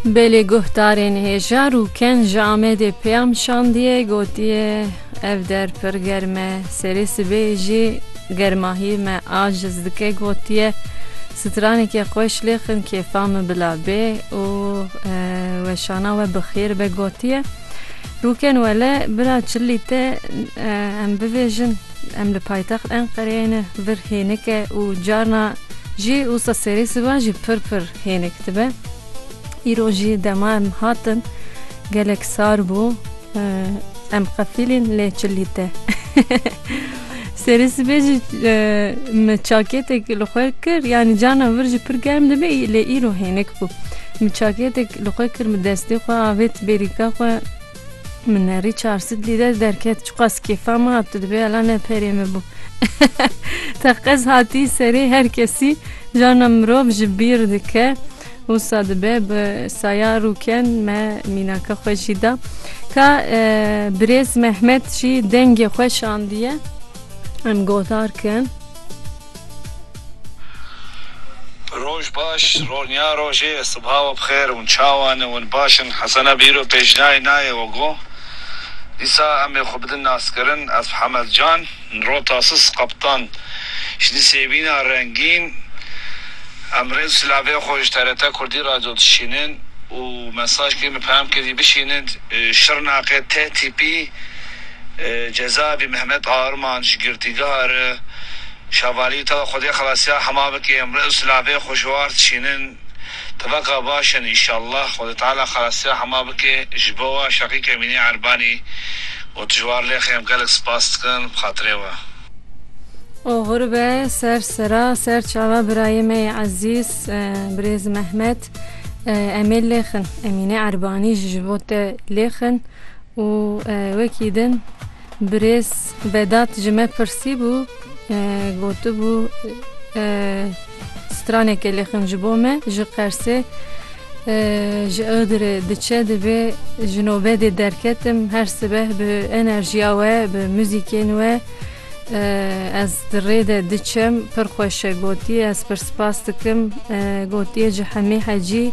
Belê guhdarên hêjar û ken ji Amedê peyam şandiye gotiye ev der pir germ e, serê sibê jî germahiyê me aciz dike gotiye straneke xweş lêxin kêfa min bila bê û weşana we bi xêr be gotiye rûken wele bira çilî te em bivêjin. Em li paytext Enqereyê ne vir hênik e û carna jî wisa serê sivan jî pir pir hênik dibe. Îro jî dema em hatin gelek sar bû. Em qefîlîn lê çi lîte. Serê sibê jî min çakêtek li xwe kir yanî carna vir jî pir germ dibe lê îro hênik bû. Min çakêtek li xwe kir bi destê xwe avêt bêrîka xwe. Min erî çar sit lîre derket çiqas kêfa min hat tu dibê ela ne perê min bû. Teqez hatî serê her kesî jana mirov ji bîr dike. Wisa dibe bi saya rûken me mînaka xwe jî da. Ka e, birêz Mehmet jî dengê xwe şandiye. Em gotar kin. Roj baş, ronya rojê, sibha we bixêr, hûn çawan in, hûn baş in? Hesena bîro pêjinayê nayê we got, Dîsa em ê xwe bidin naskirin, ez Hemed Can, nro Tasis Kaptan ji di sêvîna rengîn em rê silavê xwe ji TRT Kurdî Radyo dişînin û mesaj kê min peyam kê dî bişînin Şirnaqê tê tîpî cezavî Mehmet Arman ji girtîgeha re Şavalî tawa Xwedê xelasiya hema bike emre û silavê xwe ji war dişînin tevaka baş in înşallah Xwedê teala xelasiya hema bike ji bo we Şaqîk Emînî Erbanî û tu ji war lê xem gelek spas dikin bi xatirê we. Oxir be ser sera ser çava birayê me yê ezîz birêz Mehmet em ê lê xin Emînî Erbanî jî ji bo te lê xin û wekî din. Birêz Vedat ji me pirsîbû, gotibû straneke li xin ji bo me ji Qersê ji Iğdırê diçe divê ji nobedê derketim her sibeh bi enerjiya we bi muzîkên we ez di rê de diçem pir xweş e gotiye ez pir spas dikim gotiye ji Hemî Hecî